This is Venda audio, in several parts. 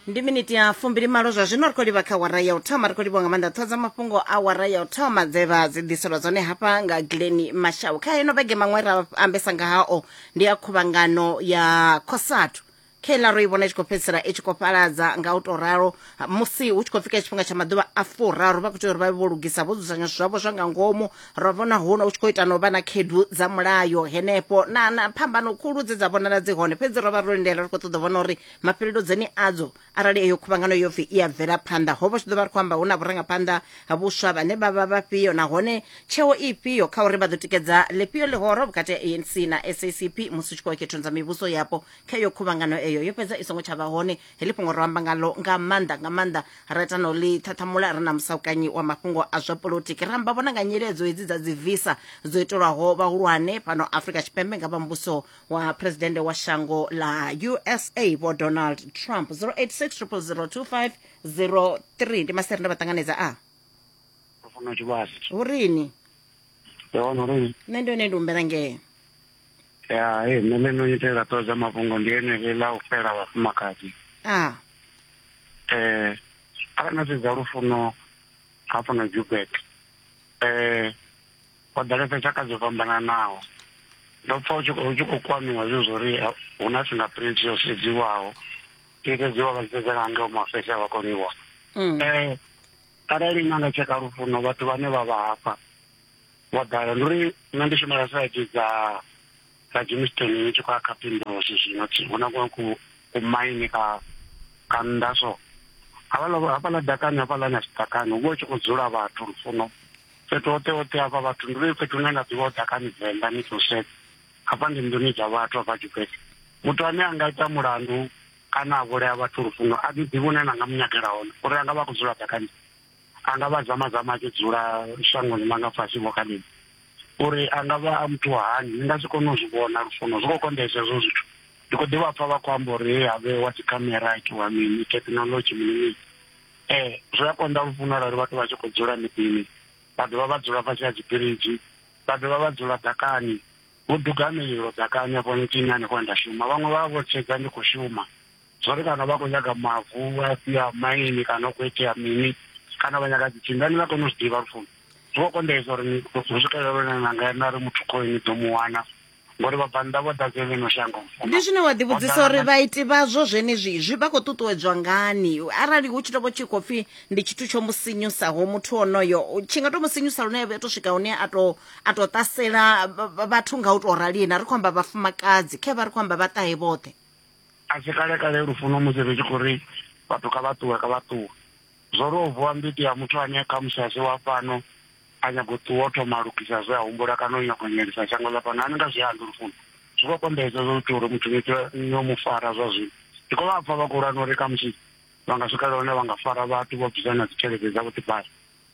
ndi miniti ya fumbili malo zwa zwino ri khou livha kha wara ya u thoma ri khou livhiwa nga maanḓa ṱhoho dza mafhungo a wara ya u thoma dze vha dzi ḓiselwa dzone hafha nga gileni mashau kha ino vhege maṅwe ra ambesa nga hao ndi ya khuvhangano ya khosathu kheila ro i vhona i tshi khou fhedzisela i tshi khou fhaladza nga u tou ralo Ha, musi hu tshi khou fika tshifhinga tsha maḓuvha a furaru vha khou tea uri vha vhe vho lugisa vho dzudzanya zwithu zwavho zwa nga ngomu ra vhona huno hu tshi khou ita no vha na khedu dza mulayo henefho na na phambano khulu dze dza vhonala dzi hone fhedzi ro vha ro lindela ri khou ṱoḓa u vhona uri mafhelelo dzeni adzo arali eyo khuvhangano yo pfi i a bvela phanḓa ho vha tshi ḓo vha ri khou amba hu na vhurangaphanḓa ha vhuswa vhane vha vha vhafhio nahone tsheo ifhio kha uri vha ḓo tikedza ḽifhio ḽihoro vhukati ha anc na sacp musi u tshi khou ya khethoni dza mivhuso yapo kha iyo khuvhangano eyo yo fhedza i songo tsha vha hone heḽi fhungo ro amba ngalo nga maanḓa nga maanḓa ra ita no ḽi ṱhaṱhamula ri na musaukanyi wa mafhungo a zwa polotiki ra amba vhona nga nyeledzo hedzi dza dzi visa dzo itelwaho vhahulwane fhano afrika tshipembe nga vha muvhuso wa presidennde wa shango ḽa usa vho donald trump 086 000 2503 ndi maseri nda vha ṱanganedza a funa tshivhasi hu rini ndi hone uri nṋe ndi hone ndi humbela ngee ya e nne ḽe no itela ṱoḓa mafhungo ndi eneli ḽa u fhela vhafumakadzi a eh arali na sedza lufuno hafho na jubek eh ho ḓalesa tshaka dzo fhambananaho ndo pfa u tshi khou- u tshi khou kwamiwa zwe zwo ri ha- hu na fingerprint yo sedziwaho i sedziwa vha tshi sedza nga ngeo mafese a vha koniwa mm. eh arali na nga tsheka lufuno vhathu vhane vha vha hafha wa ḓala ndi uri nṋe ndi shumela site dza dza Jamestown ni tshi khou ya kha Pimbulosi zwino hu na ku ku maine ka ka nnḓa so havhala hafhala dakani hafhala na sitakani hu vha hu tshi khou dzula vhathu lufuno fhethu hoṱhe hoṱhe hafha vhathu ndi uri fhethu hune nda ḓivha ho dakani venḓa ni ḓo sedza hafha ndi nḓuni dza vhathu hafha tshiphethe muthu ane a nga ita mulandu kana a vhulaya vhathu lufuno a ḓi ḓivhi une na nga mu nyagela hone uri a nga vha a khou dzula dakani a nga vha zama zama a tshi dzula shangoni ḽa nga fhasi vho khalidi uri a nga vha a muthu wa hani ni nga si kone u zwi vhona lufuno zwi khou konḓesa hezwo zwithu ndi khou ḓivha pfa vha khou amba uri he have wa dzi khamera itiwa mini thekhinolodzhi mini mini um zwi a konḓa lufuno arali vhathu vha tshi khou dzula miḓini vha dovha vha dzula fhasi ha dzibiriji vha dovha vha dzula ḓakani vho duga mililo ḓakani afho ntsini hanefho nda shuma vhaṅwe vha vha vho sedza ndi khou shuma Zwori kana vha khou nyaga mavu a si a maini kana u khou itea mini kana vha nyaga dzitsindo ani nga koni u zwi ḓivha lufuno zwi khou konḓesa uri ni hu swikelele lune na nga na ri muthu khoi ni ḓo mu wana ngori vhabvannḓa vho ḓadze ḽino shango ndi zwine wa ḓivhudzisa uri vhaiti vhazwo zwenezwi zwi vha khou ṱuṱuwedzwa ngani arali hu tshi to vho tshi khou pfhi ndi tshithu tsho mu sinyusaho muthu onoyo tshi nga to mu sinyusa lune a to swika hune a to a to ṱasela vhathu nga u to rali na ri khou amba vhafumakadzi khe vha ri khou amba vhaṱahe vhoṱhe A si kale kale lufuno musi ri tshi khou ri vhathu kha vha ṱuwe, kha vha ṱuwe, zwo ri o vuwa mbiti ya muthu ane khamusi a si wa fhano, a nyaga u ṱuwa o thoma a lugisa zwe a humbula kana o nyaga u imelisa shango ḽa fhano. A ni nga zwi ambi lufuno zwi khou kombetshedza zwo ita uri muthu ni pfe no mu fara zwa zwino. Ndi khou vha pfa vha khou lwa na uri khamusi vha nga swikelela hune vha nga fara vhathu vho bvisa na dzitshelede dza vhuḓifari.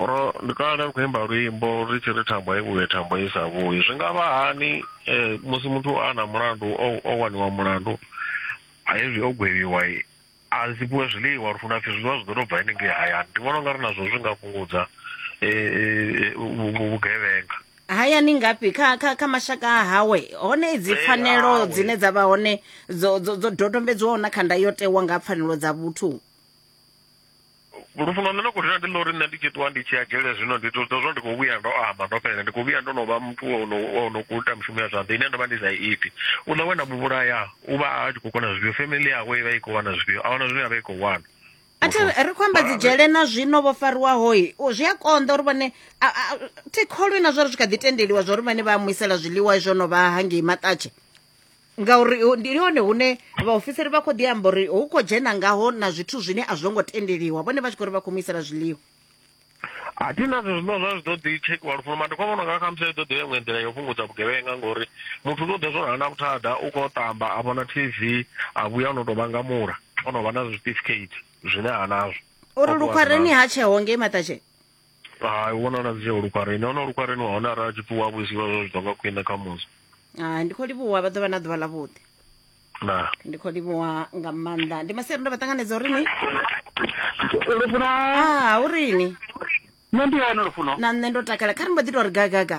Ro ndi kale ri khou imba luimbo ri tshi ri thambo i vhuye thambo i sa vhuyi zwi nga vha hani eh, musi muthu a na mulandu o, o waniwa mulandu a hezwi o gwevhiwa i, a si fhiwe zwiḽiwa ri funa pfhi zwiḽiwa zwi ḓo tou bva henengei hayani ndi vhona unga ri nazwo zwi nga fhungudza eh, eh, eh, vhu- vhu- vhugevhenga hayani ngafhi kha kha kha mashaka a hawe hone idzi Eh, pfanelo awe. dzine dza vha hone dzo dzo dzo dodombedzwaho na kha ndayotewa nga ha pfanelo dza vhuthu lufuno nṋe na khou rina ndi ḽa uri nṋe ndi tshi ṱuwa ndi tshi ya dzhele zwino ndi to zwo ndi khou vhuya ndo amba ndo fhelela ndi khou vhuya ndo no vha muthu ono ono khou ita mushumo ya zwanḓa ine ndo vha ndi sa iti u ḽa wena muvhulaya u vha a tshi khou kona zwifhio family yawe i vha i khou wana zwifhio a wana zwine ya vha i khou wana athi ri khou amba dzi dzhele na zwino vho fariwaho zwi a konḓa uri vhone thi kholwi na zwori zwi kha ḓi tendeliwa zwori vhane vha mu isela zwiḽiwa izwo no vha hangei maṱatshe ngauri ndi hone hune vhaofisiri vha khou ḓi amba uri hu khou dzhena ngaho na zwithu zwine a zwo ngo tendeliwa vhone vha tshi khou ri vha khou mu isela zwiḽiwa a thi na zwe zwino zwa zwi ḓo ḓi tshekhiwa lufuno mara ndi khou vhona nga khamusi i ḓo ḓi ya iṅwe nḓila yo fhungudza vhugevhenga ngori muthu u ḓo ḓa zwo rana vhuthada u khou ṱamba a vhona t v a vhuya o no tou vhangamula o no vha na zwitifikeiti zwine ha nazwo uri lukhwareni ha tsheo ngei maṱatsheni hai u vhonala dzi tsheo lukwareni hone lukwareni wa hone arali a tshi pfi wa vhuisiwa zwo zwi tonga khwine kha musi Ah, ndi khou livhuwa vha ḓo vha na ḓuvha ḽavhuḓi na ndi khou livhuwa nga maanḓa ndi maseri ndo vha ṱanganedza uri ni lufuno ah u rini nṋe ndi hone lufuno na nṋe ndo takala kha ri mbo ḓi tou ri gagaga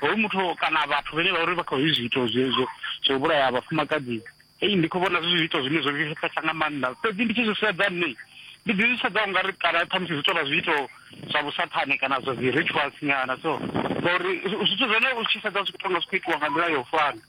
hoyu muthu kana vhathu vhene vha uri vha khou zwi zwiito zwezwo zwo vhulaya vhafumakadzi ei ndi khou vhona zwi zwiito zwine zwo vhifhesa nga maanḓa fhedzi ndi tshi zwi sedza nṋe ndi ḓi zwi sedza ungari kana ṱhamusi zwi tovha zwiito zwa vhusathane kana zwa dzi rituals nyana so ngauri zwithu zwone u tshi sedza zwi khou tonga zwi khou itiwa nga nḓila ya u fana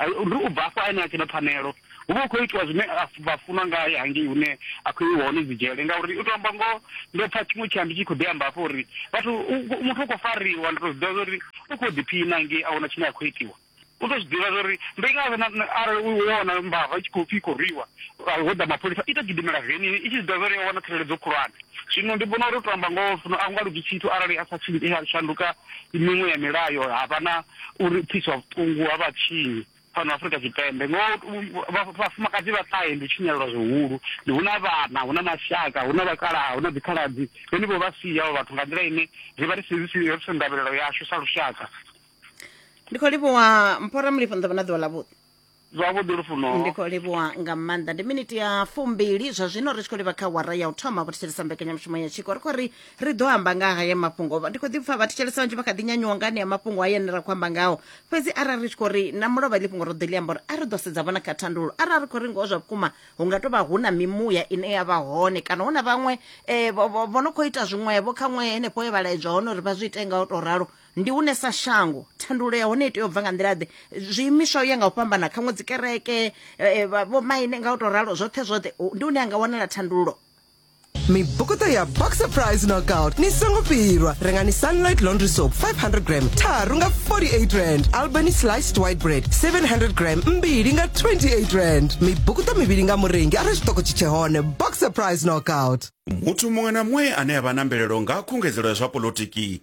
Ndi u bva afho ane a tshi na pfanelo, hu vha hu khou itiwa zwine vha funwa ngae hangei hune a khou iwa hone dzi dzhele, ngauri u tou amba ngoho ndo pfa tshiṅwe tshiambi tshi khou ḓi amba hafho uri vhathu muthu u khou fariwa ndi tou zwi ḓivha zwa uri u khou ḓiphina hangei a huna tshine a khou itiwa. U tou zwi ḓivha zwa uri ndi ngazwo arali u wo wana mbava i tshi khou pfi i khou rwiwa ho ḓa mapholisa i tou gidimela venini i tshi zwi ḓivha zwa uri yo wana tsireledzo khulwane. Zwino ndi vhona uri u tou amba ngoho fhano a hu nga lugi tshithu arali a sa shanduka miṅwe ya milayo ha vha na uri u pfiswa vhuṱungu ha vhatshinyi fhano Afrika Tshipembe ngo vhafumakadzi vha ṱahe ndi tshinyalelwa zwihulu ndi huna vhana huna mashaka huna vhakalaha huna dzikhaladzi vhone vho vha sia avho vhathu nga nḓila ine ri vha ri si ri si ndavhelelo yashu sa lushaka ndi khou livhuwa mphora mulifho nḓavha na ḓuvha ḽavhuḓi Zwavhuḓi Lufuno. ndi khou livhuwa nga maanḓa ndi miniti ya fumbili zwa zwino ri tshi khou livha kha wara ya u thoma vho thetshelesa mbekanyamushumo ya tshiko ri khou ri ri ḓo amba nga haya mafhungo Vha- ndi khou ḓi pfa vha thetshelesa vhanzhi vha kha ḓi nyanyuwa nga anea mafhungo haya ane ra khou amba ngao fhedzi arali ri tshi khou ri na mulovha iḽi fhungo ro ḓo ḽi amba uri a ri ḓo sedza vhona kha thandululo arali ri khou ri ngoho zwa vhukuma hu nga tou vha hu na mimuya ine ya vha hone kana hu na vhaṅwe eh, vho- vho vho no khou ita zwiṅwevho kha ṅwe henefho he vha laedzwa hone uri vha zwi ite nga u tou ralo Ndi hune sa shango thandululo ya hone i tea u bva nga nḓila-ḓe? Zwiimiswa u ya nga u fhambana, khaṅwe dzi kereke, eh, eh, vha- vhomaine nga u tou ralo, zwoṱhe zwoṱhe, hu- ndi hune ha nga wanala thandululo. mibukuṱo ya boxer price knockout ni songo fhirwa rengani sunlight laundry soap 500 gram tharu nga 48 rand albany sliced white bread 700 gram mbili nga 28 rand mibukuṱo mivhili nga murengi arali tshiṱoko tshi tshe hone boxer price knockout muthu muṅwe na muṅwe ane a vha na mvelelo nga ha khungedzelo ya zwa polotiki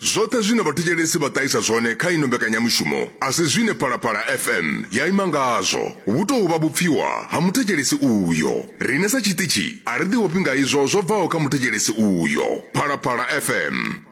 Zwoṱhe zwine vhathetshelesi vha ṱahisa zwone kha ino mbekanyamushumo a si zwine Phalaphala FM ya ima ngazwo. Vhu tou vha vhupfiwa ha muthetshelesi uyo. Riṋe sa tshiṱitshi a ri ḓiofhi nga izwo zwo bvaho kha muthetshelesi uyo. Phalaphala FM.